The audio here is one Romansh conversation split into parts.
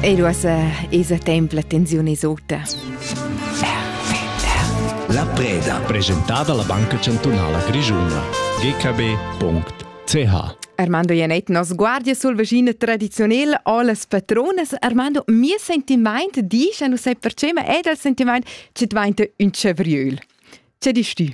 E uossa esa temp la tensiun es ota. La preda. Presentada la Banca Chantunala Grischuna. gkb.ch Armando Janet nos guardia sul vecino tradizionale ho las patronas Armando mi sentiment dice non sai perché ma è dal sentiment che diventa un cevriol. Che dici tu?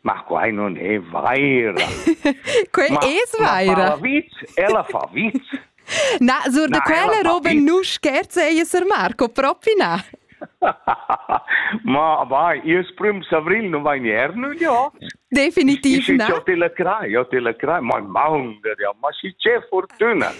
Ma quai non è vaira. Quel ma, es vaira. Ma fa vit, ella fa vit. Na, sur de quella roba nu scherze ella Sir Marco, propi na. Ma vai, io prim avril non vai nier, nu ja. Definitiv na. Jo te la crai, jo te la crai, ma maunga ja, ma si c'è fortuna.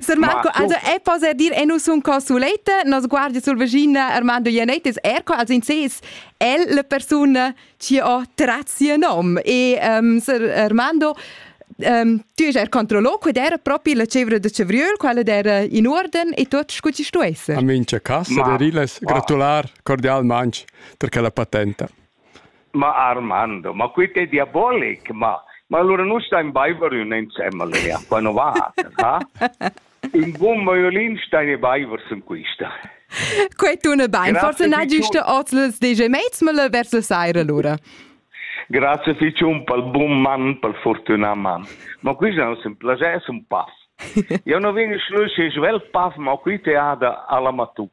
Sir Marco, also e poser dir e nus un consulete, nos guardia sul vagina Armando Ianettis, erco als inses, el la persona Ti ho tratti il nom e um, Sir Armando um, tu es er controllo, qued era propi la cevra da cevriöl, quella era in orden e tot scu ci stu esser. A mincha casa ma, der illes gratular cordialmanch per quella patenta. Ma Armando, ma qui è diabolic, ma ma allora nu stai in baiver ün insemmel, ja, quando va, ha? Un bun violin stein e baiver sun quista. Quei tuna bein, forse n'hai giusta ozels DJ Maidsmölle vers la saira lura. Grazie Ficium pel bun man, pel fortunà man. Ma quista non sun plager, sun paff. Io non vegn schlüschi svelt paff, ma qui te ada alla matuc.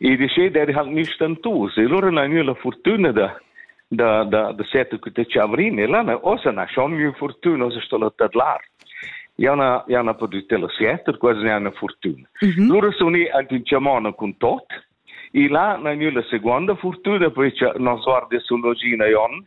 E decider halt nicht dann tu. Se loro na gnü la fortuna da da da da set cu te chavrin e lana osa na schon gnü fortuna osa sto la tadlar. Jana jana perdüte la sieter, quasi ne una fortuna. Mm -hmm. Loro suni anche in chamona con tot. E là na gnü la seconda fortuna, perché nos guardia sul logina jon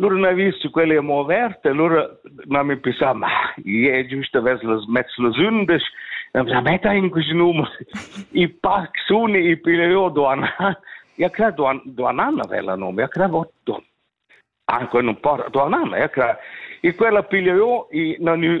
Lura n'hai vis che quella è mo averta, lura n'ha mi pensà, ma ie, giust avess las mezz las undisch. Am sa, metta in quest numer. I pac suni, i pile io duan. Ja cra duan, duan anna vela nome, ja cra votto. Anche non porta duan anna, ja cra. I quella piglia io, i nanu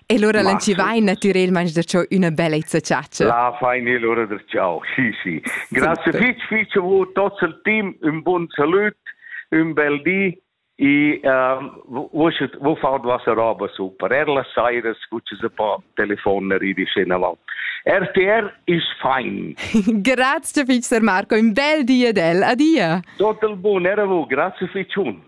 E lura l'enchivain natürelmaing da cho üna bellezza chatscha. La fain e lura da ciao. Sì, sì. Grazie fitch, fitch a voi tots il team, un bun salut, un bel di e uh, vos faunt vossa roba super. Er las sairas scuccias un po' telefon ridisch in avant. RTR is fine. Grazie fitch, Sir Marco, un bel di ad el. Adia. Tot il bun, era vu, grazie fitch un.